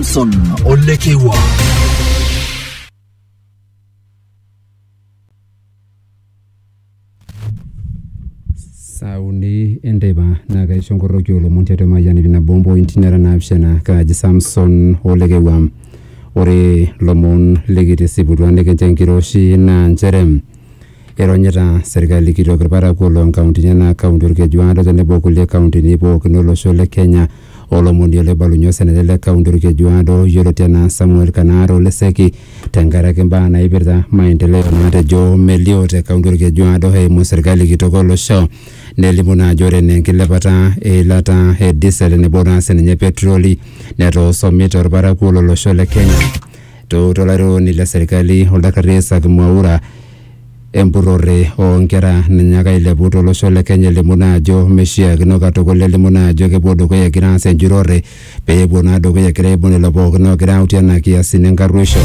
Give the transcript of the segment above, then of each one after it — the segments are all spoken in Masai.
Samson Olekewa. saa uni enteipa naa kaisho nkorroki olomon tiatua emayian ipina bombo inti nera naapishana kaaji samson olekewa ore lomon likitisiputua nikincho enkiroshi naa nchere Eronyita serkali kitok ilparakuo loo nkauntini enaa kaunti Olkeju Aado tenebo o kulie kauntini pookin o losho le Kenya. Olomoni oloibalunye osenetani le kaunti Olkeju Aado yioloti enaa Samuel Kanaare Ole Seki tenkaraki mbaa naipirta maendeleo naatejo melio te kaunti Olkeju Aado eimu serkali kitok o losho. Nelimu naa ajo ore enaa enkilepata e ilata e disel tenebo naa sininye petiroli netoosomie to lparakuo lo losho le Kenya. Etoorutua olairukoni le serkali oldakarri Isaac Mwaura empurrore oo nkera nanyaaka ailepu to losho le Kenya elimu naa ajo meishiakino katukul elimu naa ajo kepuo dukuya egira aas enjurore pee epuo naa dukuya egira aibung lelo pookin oogira autie nena kiasin enkarruisho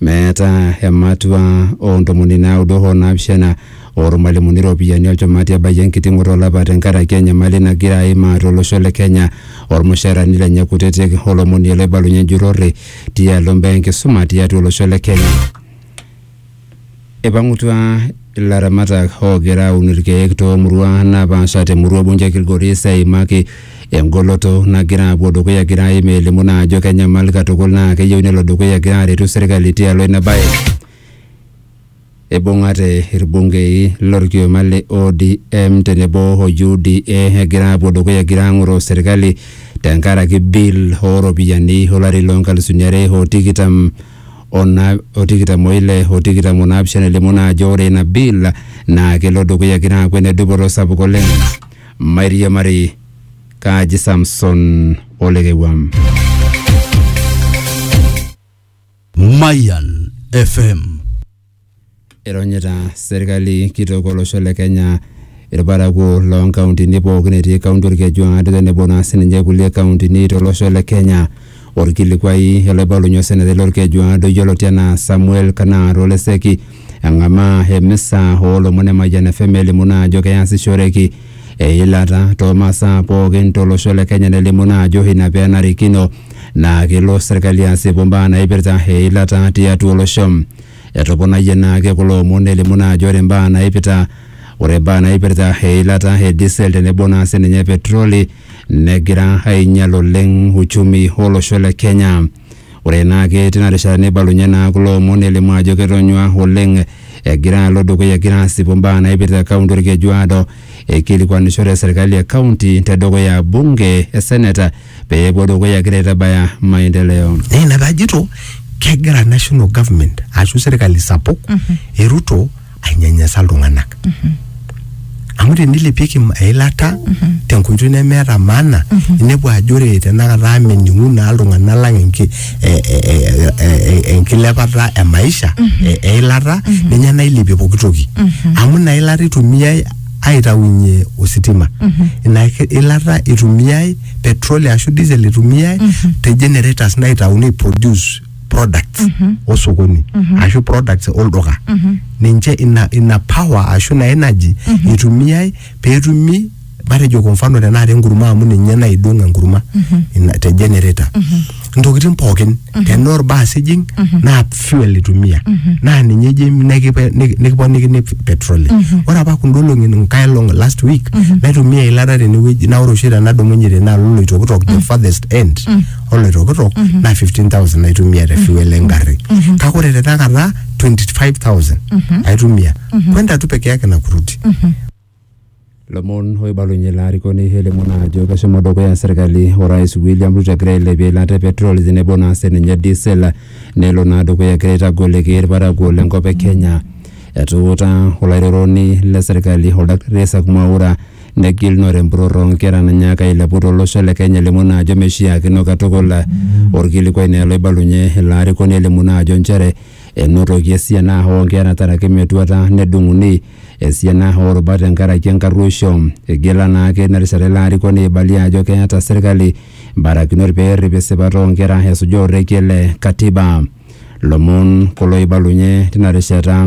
meetaa ematua oo ntomoni naudo hoo naapishana oo lmalimuni iropiyiani olchumati ebayie enkiting'oto olapa tenkaraki enyamali nagira aimaa to losho le Kenya olmushaarani lenye kutitik o lomoni loibalunye enjurore tialo mbaa enkisuma tiatua olosho le Kenya. Ipang'utua ilaramatak oogira aun irkeek toomurua napaasha temurua Bunju e Kilgoris eimaki engoloto nagira apuo dukuya egira aim elimu naa ajo kenyamal katukul naa keyieu nelo dukuya egira aretu serkali tialo ina bae. Eibung'ate ilbungei lo lkioma le ODM tenebo o UDA egira apuo dukuya egira ang'oroo serkali tenkaraki bill oo ropiyiani o lari loo nkalisuni are o tikitam o na o tikitam o ile o tikitam o naapishana elimu naa ajo ore ina bill naa kelo dukuya egira aaku ene dupoto sapuk oleng. Mairiamari kaaji Samson Olekewuam. Mayan FM. Ironyita serkali kitok olosho le Kenya irparakuo loo nkauntini pookin etii kaunti Orkejuaa tenebo naa sininche kulie kauntini tolosho le Kenya. Orkilikuai olaibalunye osenetari lorkejuaa Doyiolo Tiana Samuel Kanaar Oleseki eng'amaa emisa oolomon e Mayian FM elimu naa ajo keasishoreki eilata too masaa pookin to losho le Kenya nelimu naa ajo ina pee enarikino naa kelo serkali asipu mbaa naipirta eilata tiatua olosho. Etoponayie naa ake kulo omon nelimu naa ajo ore mbaa naipita ore mbaa naipirta eilata e diesel tenebo naa sininye petroli negira ainyal oleng uchumi o losho le Kenya. Ore naa ake tina rishata neibalunye naa kulo omon nelimu ajo ketonyua oleng egira alo dukuya egira asipu mbaa naipirta kaunti Olkeju Aado eikilikuanishore serkali e kaunti te dukuya bunge, eseneta pee epuo dukuya egira aitabaya maendeleo. Naa ina pee ajito kegira national government ashu serkali sapuk e Ruto ainyanyasa iltung'anak amu tenilepieki im- eilata tenkoitoi nemeeta maana inepu ajo ore tenakata mening'u naa iltung'anak lang enki- e- e- e- e- e- enkilepata e maisha e- eilata ninye nailepie pooki toki amu ina ilata itumiai aitaunye ositima ina ki- ilata itumiai petroli ashu diesel itumiai te generators naitauni produce products osokoni ashu products olduka ninche ina, ina power ashu ina energy itumiai peetumi matejo kwa mfano tenakata enkurma amu ninye naidong enkurma ina, te generator ntokitin pookin tenaa orbaas ijing naa fuel itumia naa ninye ijing nikipe- niki- nikiponikini petroli ore apa kunda olong'i nkae olong last week naitumia eilata tenewueji naa ore oshi tenadumunye tenaalo oloitokitok the farthest end oloitokitok naa 15000 aitumia te fuel engarri kake ore te takata 25000 aitumia kwenda tu peke yake na kurudi lomon oibalunye ilo arikoni elimu naa ajo keshomo dukuya serkali orais William Ruto egira ailepie eilata e petrol tenebo naa sininye diesel nelo naa dukuya egira aitagoliki irparakuo lenkop e Kenya etuuta olairoroni le serkali oldakitari Isaac Mwaura Negilunore empurrorro oo nkera nanyaaka ailepu to losho le Kenya elimu naa ajo meishiakino katukul. Olkilikuai naa ele oibalunye ilo arikoni elimu naa ajo nchere enotoki esiana oo nkera taraki metuata nedung'uni esiana oo rubat tenkaraki enkarruoisho. Igila naa ake ina rishata ilo arikoni aibalie ajo keeta serkali mbarakinot pee errip esipata oo nkera esuja orekie le Katiba. Lomon kulo oibalunye tina rishata.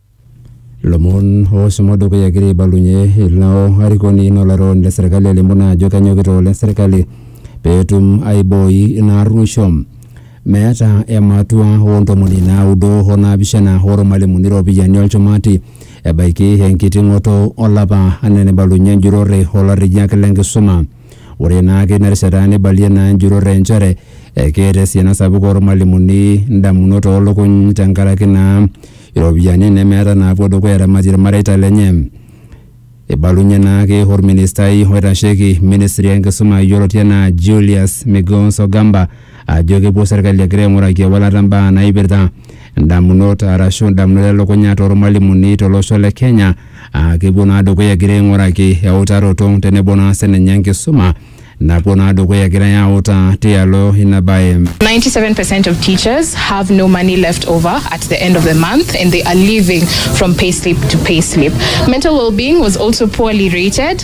Lomon ooshomo dukuya egira aibalunye ilo arikoni naa olairukoni le serkali alimu naa ajo kenyokita oleng serkali peetum aibooi ina arruosho. Meeta ematua oo ntomoni naudo o naapishana oo lmalimuni iropiyiani o lchumati ebaiki enkiting'oto olapa anaa eneibalunye enjurore o larriyiak le nkisuma. Ore naa teina rishata neibalie naa enjurore nchere keeta esiana sapuk oolmalimuni indamunot oo lukuny tenkaraki naa iropiyiani nemeeta naapuo dukuya aaramatie ilmareita lenye. Eibalunye naake olministai oitasheki ministri enkisuma yioloti anaa Julius Migos Ogamba ajo kepuo serkali egira aing'uraki ewalata mbaa naipirta ndamunot arashu ndamunot elukunya tormalimuni tolosho le Kenya aa kepuo naa dukuya egira aing'uraki eutaroto tenebo naa sininye enkisuma napuo naa dukuya egirai autaa tialo ina bae. 97% of teachers have no money left over at the end of the month and they are living from payslip to payslip. Mental well being was also poorly rated.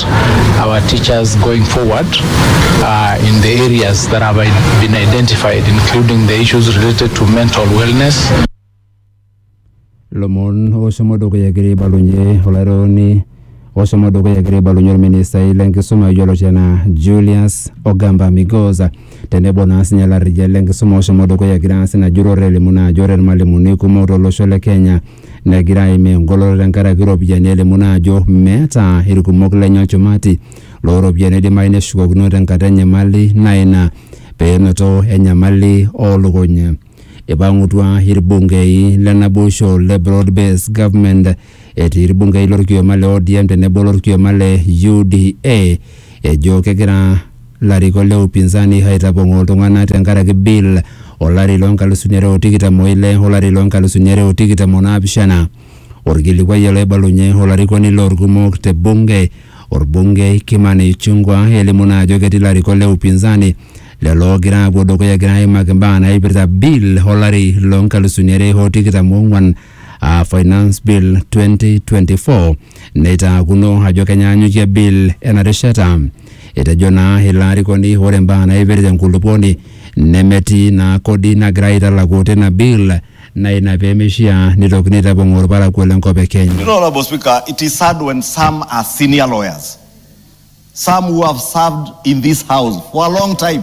support our teachers going forward uh, in the areas that have i- been identified, including the issues related to mental wellness. lomon oshomo dukuya egira aibalunye olaironi oshomo dukuya egira aibalunye olministai lenkisuma yioloti anaa julius ogamba migoza tenebo naa sinye larriyia lenkisuma oshomo dukuya egira naa sinye ajurrore elimu naa ajo ore ilmalimuni kumok tolosho le kenya negira aimaa engoloto tenkaraki iropiyiani elimu naa ajo meeta irkumok lenye olchumati looropiyiani oidimayu neshukokino tenkata enyamali naa ina penoto enyamali oolukuny. Ipang'utua irbungei le naboisho le Broad Based Government etii irbungei lorkioma le ODM tenebo olorkioma le UDA ejo kegira Larikok le upinzani aitapong'oo iltung'ana tenkaraki bill o lari loo nkalusuni are o tikitam o ile o lari loo nkalusuni are o tikitam o naapishana. Olkilikuai ele oibalunye olarikoni loo lkumok te bunge, olbungei Kimani Ichung'wa elimu naa ajo ketii larikok le upinzani lelo oogira aapuo dukuya egira aimaki mbaa naaipirta bill o lari loo nkalusuni are o tikitam o ong'uan aa Finance Bill 2024 neitaakuno ajo kenyaanyukie bill ena rishata. Etejo naa ilo arikoni ore imbaa naipirta enkulupuoni nemetii naa kodi nagira aitalaku tina bill naa ina pemeishiaa neitokini aitapong'oo olparakuo le nkop e Kenya. You know, Honorable Speaker, it is sad when some are senior lawyers, some who have served in this house for a long time.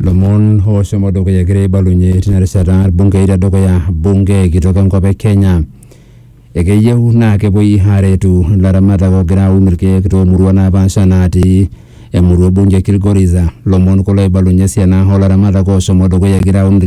Lomon oshomo dukuya egira aibalunye tina rishata irbungei tedukuya bunge kitok enkop e Kenya. Ekeyieu naa kepuoi aaretu ilaramatak oogira aun irkeek toomuruan napaasha natii emurua e bunge e Kilgoris. Lomon kulo oibalunye esiana oo laramatak oshomo dukuya egira aun irkeek